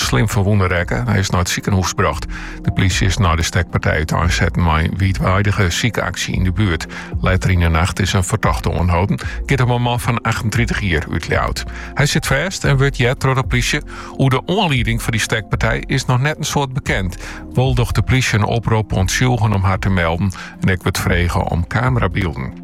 slim ferwûne rekke. Hy is nei it sikehûs brocht. De plysje is nei de stekpartij útein setten mei in wiidweidige sykaksje yn de buert. Letter yn de nacht is in fertochte oanholden. Giet om in man fan 38 jier út Ljouwert. Hy sit fêst en wurdt heard troch de plysje. Oer de oanlieding foar dy stekpartij is noch net in soad bekend. Wol docht de plysje in oprop oan tsjûgen om har te melden en ek wurdt frege om kamerabylden.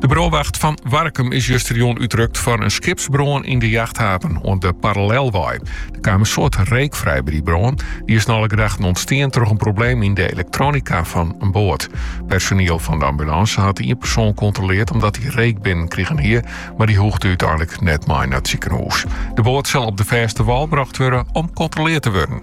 De brânwacht fan Warkum is justerjûn útrukt foar in skipsbrân yn de jachthaven oan de Parallelwei. Der kaam in soad reek frij by die brân. Dy is nei alle gedachten ûntstien troch in probleem yn de elektronika fan in boat. Personiel fan de ambulânse hat ien persoan kontroleerd omdat hy reek binnen krigen hie, mar dy hoegde úteinlik net mei nei it sikehûs. De boat sil op de fêste wal brocht wurde om kontroleerd te wurden.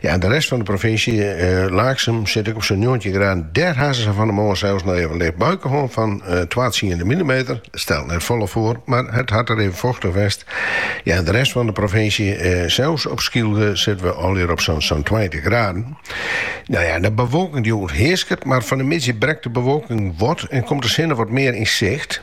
Ja, en de rest fan de provinsje, Laaksum, sit ek op sa'n njoggentjin graden. Dêr ha se sa fan 'e moarn sels noch even in licht buike hân fan twatsiende millimeter. It stelt net folle foar, mar it hat der even fochtich west. Ja, en de rest fan de provinsje, sels op Skylge, sitte we allegear op sa'n sa'n tweintich graden. No ja, de bewolking die oerhearsket, mar fan 'e middei brekt de bewolking wat en komt de sinne wat mear yn sicht.